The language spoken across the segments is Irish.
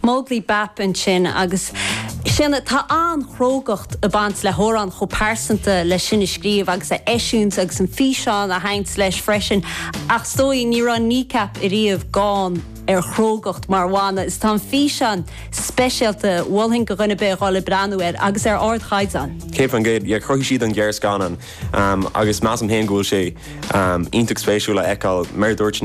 Móglaí Bap, ansin, agus sin é, tá an-chrógacht ag baint le hamhrán chomh pearsanta leis sin a scríobh agus a eisiúint agus an físeán a bhaint leis freisin ach is dóigh, ní raibh Kneecap ariamh gann ar chrógacht mar bhanna agus tá an físeán speisialta, mholfainn go dhuine ar bith a dhul ag breathnú air agus ar ardchaighdeán. Cape an Gate, yeah, chruthaigh siad an gearrscannán agus measaim féin go bhfuil sé iontach spéisiúil a fheiceáil mar a dúirt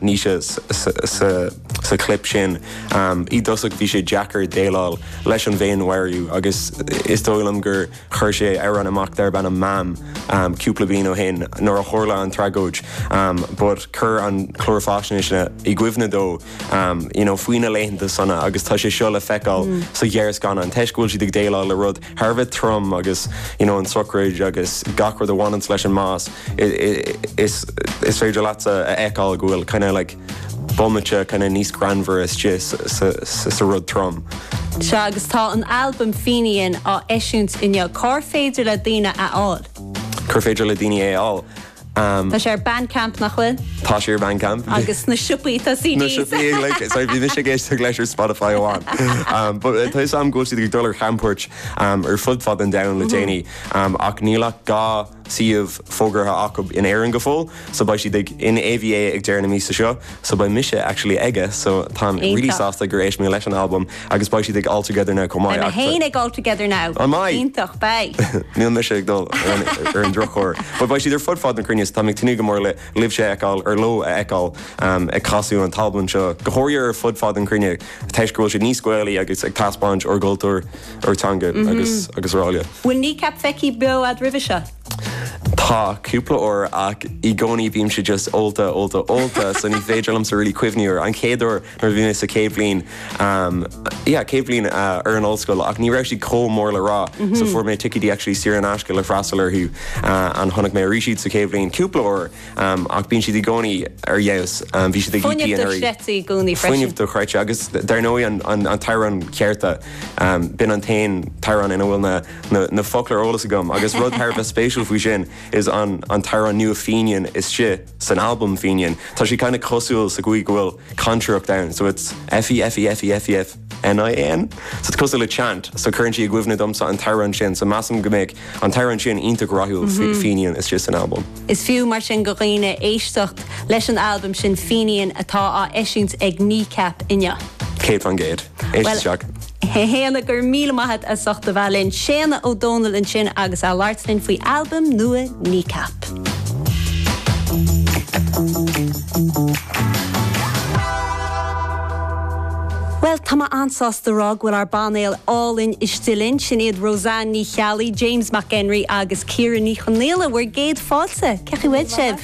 Naoise sa sa chlip sin. I dtosach bhí sé deacair déileáil leis an bhféinmharú agus is dóigh liom gur chuir sé amhrán amach darb ainm Mam cúpla bliain ó shin nuair a tharla an tragóid but chuir an clár fáisnéise i gcuimhne dó you know faoi na laethanta sona agus tá sé seo le feiceáil sa ghearrscannán toisc go bhfuil siad ag déileáil le rud thar a bheith trom agus you know an tsochraid agus gach rud a bhaineanns leis an mbás is féidir leat é a fheiceáil go bhfuil kind of like bomaite kind of níos greannmhaire istigh sa sa sa rud trom. Sea agus tá an albam Fenian á eisiúint inniu, cár féidir le daoine é a fháil? Cár féidir le daoine é a fháil? Tá sé ar Bandcamp, nach bhfuil? Tá sé ar Bandcamp. Agus sna siopaí tá CDs. Na siopaí ag like, sorry bhí mise ag éisteacht leis ar Spotify amháin. But tá fhios a'm go bhfuil siad ag dul ar chamchuairt ar fud fad an domhain le déanaí ach níl ach dhá shuíomh fógartha acu in Éirinn go fóill so beidh siad ag in AVA ag deireadh na míosa seo. So beidh mise actually aige sin so táim really Iontach. sásta gur éist mé leis an albam agus beidh siad ag All Together Now chomh Beidh maith mé ach t- féin ag All Together Now. An mbeidh? Iontach, beidh. Níl mise ag dul ar an ar an drochuair. But beidh siad ar fud fad na cruinne so táim ag tnúth go mór le libhse a fheiceáil, ar leo a fheiceáil em ag casadh an t-albam seo go háirithe ar fud fad an chruinne toisc go bhfuil siad níos Gaelaí agus ag taispeáint ár gcultúr, ár dteanga agus araile. Bhfuil Kneecap feicthe beo a'd roimhe seo? Tá, cúpla uair, ach i gcónaí bímse just ólta, ólta, ólta, so ní féidir liomsa really cuimhneamh ar an chéad uair nuair a bhí mé sa chéad bhliain, em, yeah, céad bhliain ar an ollscoil ach ní raibh siad comh mór le rá so fuair mé ticéid actually saor in aisce le freastal orthu and chonaic mé arís iad sa chéad bhliain cúpla uair, em, ach bíonn siad i gcónaí ar fheabhas, em, bhí siad ag EP Fuinneamh do anuraidh. chreidte i gcónaí Fuinneamh freisin. do chreidte agus dar ndóigh an, an, an t-amhrán Cearta, em, b'in an t-aon t-amhrán ina bhfuil na, na focla ar eolas agam agus rud thar a bheith spéisiúil faoi sin is an an t-amhrán nua Fenian istigh san albam Fenian tá sé kinda cosúil sa gcaoi go bhfuil cantaireacht ann so it's F-e-f-e-f-e-f-e-f-n-i-a-n so it's cosúil le chant so cuireann sí i gcuimhne domsa an t-amhrán sin so measaim go mbeadh an t-amhrán sin iontach rathúil faoi Fenian istigh san albam. Is fiú mar sin go dhaoine éisteacht leis an albam sin Fenian atá á eisiúint ag Kneecap inniu. Céad faoin gcéad. Éist isteach. Shéanna, go raibh míle maith a't as ucht a bheith linn. Séanna Ó Dónaill ansin agus é a' labhairt linn faoi albam nua Kneecap. Bhuel, tá mé an-sásta a rá go bhfuil ár bpainéal álainn istigh linn. Sin iad Roseann Ní Cheallaigh, James Mac Enrí agus Ciara Ní Chonaola, bhur gcéad fáilte. Cé chaoi bhfuil sibh?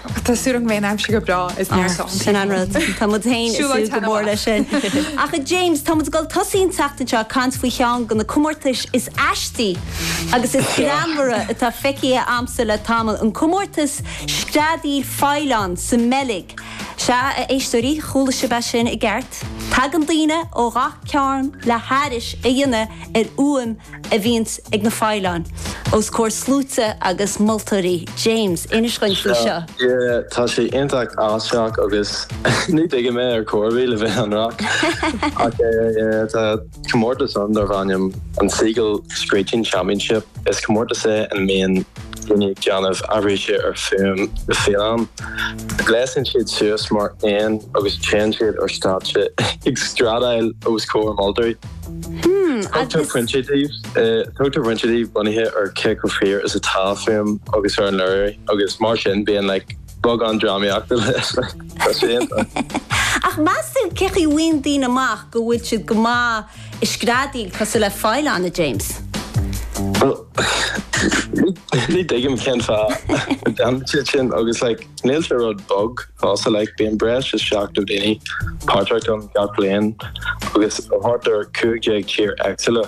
Tá súil agam go mbeidh an aimsir go breá is níor sá an Sin an rud. Tá muid féin ag súil go mór leis sin. Ach a James, táimid ag dul ag tosaí an tseachtain seo ag caint faoi cheann de na comórtais is aistí agus is greannmhara atá feicthe a'msa le tamall, an comórtas Screadaíl Faoileán sa mBeilg. Sea, a éisteoirí, chuala sibh é sin i gceart. Tagann daoine ó gach cearn le haithris a dhéanamh ar fhuaim a bhíonns ag na faoileáin os comhair sluaite agus moltóirí. James, inis dhuinn faoi seo. Yeah, tá sé iontach aisteach agus ní thuigim é ar chor ar bith le bheith ionraic. Ach yeah, tá comórtas ann darb ainm an Seagull Screeching Championship. Is comórtas é ina mbíonn daoine ag déanamh aithrise ar fhuaim na faoileán. Gléasann siad suas mar éin agus téann siad ar stáitse ag screadaíl os comhair moltóirí. Tugtar pointí dóibh bunaithe ar cé chomh fíor is atá an fhuaim agus ar an léiriú agus mar sin bíonn like beagán drámaíochta leis like tá sé iontach. Ach meastú cé chaoi bhfaigheann daoine amach go bhfuil siad go maith ag screadaíl cosúil le faoileán, a James? Bhuel ní ní thuigim cén fáth a dhéanann siad sin agus like níl sé rud beag. Falsa like, bíonn breis is 70 daoine páirteach ann gach bliain agus ó thart ar 15 tír éagsúla.